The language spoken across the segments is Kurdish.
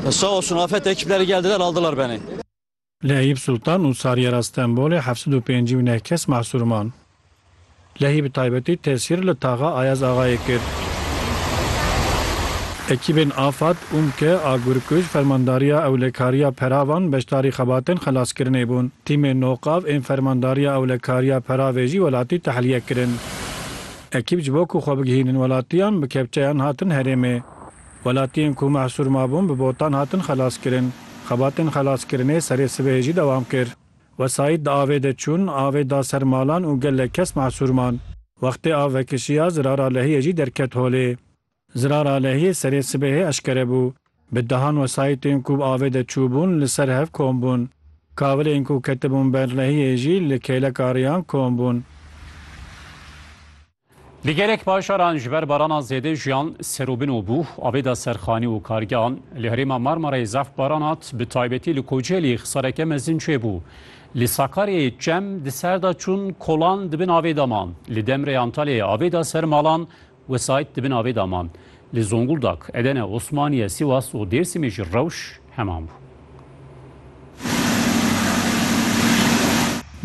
Sağ olsun afet ekipleri geldiler aldılar beni. Li Eyüp Sultan û Sariyera Stenbolê heft sed û pêncî û neh kes mahsûr man. Lehî bi taybetî tesîr li taxa Ayaz Axayê kir. Ekîbên Afad, UMKE, Agurkuj, Fermandariya Ewlekariya Peravan beşdarî xebatên xelaskirinê bûn. Tîmên NOKAV ên Fermandariya Ewlekariya Peravê jî welatî tehliye kirin. Ekîb ji bo ku xwe bigihînin welatiyan bi kepçeyan hatin herêmê. Welatiyên ku mehsûr mabûn bi botan hatin xelaskirin. Xebatên xelaskirinê serê sibehê jî dewam kir. Wesayît di avê de çûn, avê da ser malan û gelek kes mehsûr man. Wextê av vekişiya Zirara Lehiyê jî derket holê. Zirara Lehiyê serê sibehê eşkere bû. Bi dehan wesayîtên ku bi avê de çûbûn li ser hev kom bûn. Kavilên ku ketibûn ber Lehiyê jî li kêleka riyan kom bûn. Li gelek bajaran ji ber barana zêde jiyan serûbin û bû, avêda serxanî û kargehan. Li herêma Marmarayê zaf baran hat, bi taybetî li Kocelî xisareke mezin çêbû. Li Sakaryayê çem di ser de çûn, kolan di bin avê de man. Li Demrê Antalyayê avê da ser malan, wesayît di bin avê de man. Li Zonguldak, Edene, Osmaniye, Sîwas û Dêrsimê jî rewş heman bû.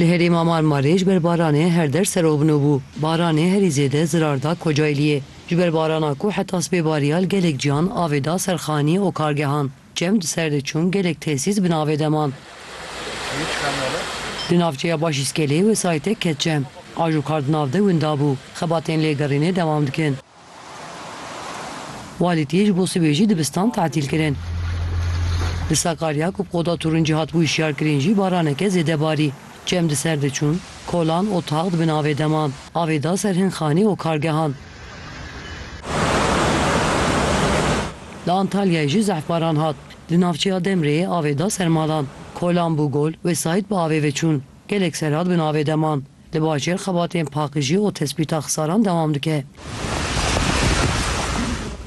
Li herêma Marmarê ji ber baranê her der serovno bû. Baranê herî zêde zirar da Kocaeliyê. Ji ber barana ku heta sibê bariya li gelek cihan avê da ser xanî û kargehan. Çem di ser de çûn gelek tesîs bi navê de man. Li navçeya Başîskelê wesayîtek ket çem. Aj û kar di nav de winda bû. Xebatên lêgerînê dewam dikin. Walî tê ji bo sibê jî dibistan tatîl kirin. Li Sakarya ku bi qoda tûrincî hatibû hişyarkirin jî baraneke zêde barî. Çem di ser de çûn. Kolan, otaq di bin avê de man. Avê da ser hin xanî û kargehan. Li Antalyayê jî zehfbaran hat. Di navçeya Demreyê avê da ser malan. Kolan bû gol, wesayît bi avê ve çûn. Gelek serad bin avê de man. Li bajêr xebatên paqijî û tespîta xisaran dewam dike.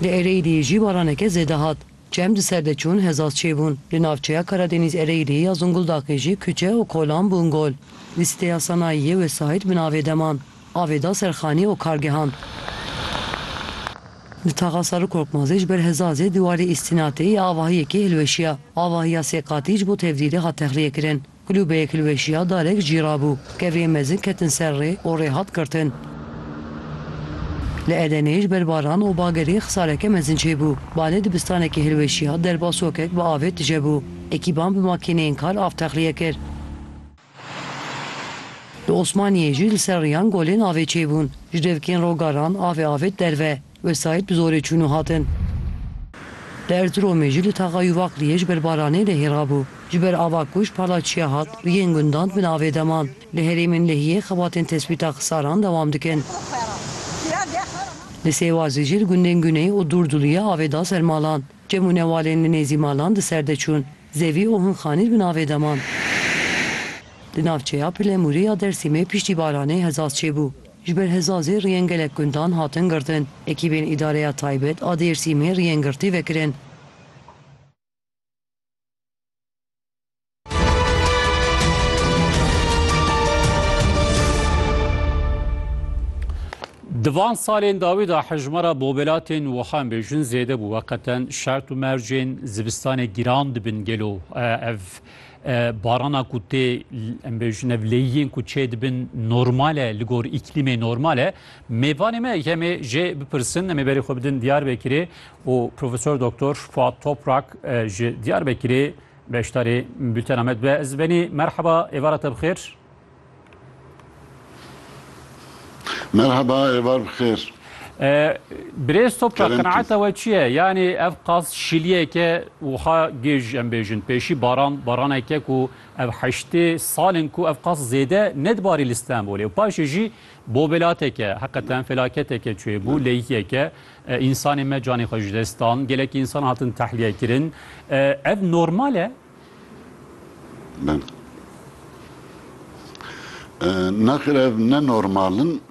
Di Ereyîliyê jî baraneke zêde hat. Çem di ser de çûn hezaz çêbûn. Li navçeya Karadeniz Ereyîliyê ya Zunguldaqê jî kuçe û kolan bûn gol. Di siteya sanayiyê wesayît bi navê deman, avê da ser xanî û kargehan. Di taxa Sarı Korkmazê ji ber hezazê dîwarê îstînatê ya avahiyekê hilweşiya. Avahiya sê qatî ji bo tevdîrê hat texliyekirin. Kulûbeyek li weşiya dalek cîra bû. Kevên mezin ketin ser rê û rê hat girtin. Li Edeneyê ji ber baran û bagerê xisareke mezin çêbû. Balê dibistanekê hilweşiya, derba sokek bi avê tije bû. Ekîban bi makîneyên kar av texliye kir. Li Osmaniyê jî li ser riyan golên avê çêbûn. Ji devkên rogaran avê avêt derve. Wesayît bi zorê çûn û hatin. Li Erziromê jî li taxa Yûvakliyê ji ber baranê lehîra bû. Ji ber ava ku ji palaçiya hat û yên gundan bi navê de man. Li herêmên lehiyê xebatên tespîta xisaran dewam dikin. Li Sêwazê jî li gundên Guney û Durduliyê avê da ser malan. Cem û newalên li nêzî malan di ser de çûn. Zevî û hin xanîr bi navê de man. Di navçeya Pilemûrê ya Dersîmê piştî baranê hezaz çêbû. Ji ber hezazê riyên gelek gundan hatin girtin. Ekîbên Îdareya Taybet a Dêrsîmê riyên girtî vekirin. Di van salên dawî de hejmara bobelatên wiha em bêjin zêde bû. Weqeten şert û mercên zivistanê giran dibin gelo ev Barana ku tê em bêjin ev lêyiyên ku çê dibin normal e li gor îklîmê normal e. Mêvanê me em ê jê bipirsin em ê berê xwe bidin Diyarbekirê û Profesor Doktor Fuat Toprak ji Diyarbekirê beşdarê bültena me dibe. Ez benê merheba êvara te bi xêr. Merheba êvar bi xêr. Birêz Toprak qenaeta we çi ye? Yanî ev qas şiliyeke wiha gêj em bêjin pêşî baran baraneke ku ev heştê sal in ku ev qas zêde nedibarî li Stenbolê û paşê jî bobelateke heqeten felaketeke çêbû leyhiyeke însanê me canê xwe ji dest dan gelekî însan hatin tehliyekirin ev normal e? Nexir ev ne normal in.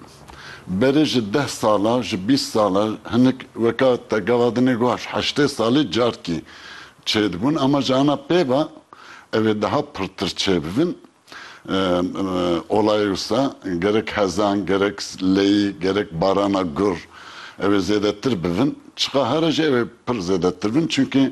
Berê ji deh sala, ji bîst sala hinik weka te gava dinê guhaş heştê salî carkî çêdibûn ama ji ana pêva ev ê daha pirtir çêbibin. Olayê wisa gerek hezan, gerek leyî, gerek barana gur ew ê zêdetir bibin. Çiqahare jî ew ê pir zêdetir bin. Çunkî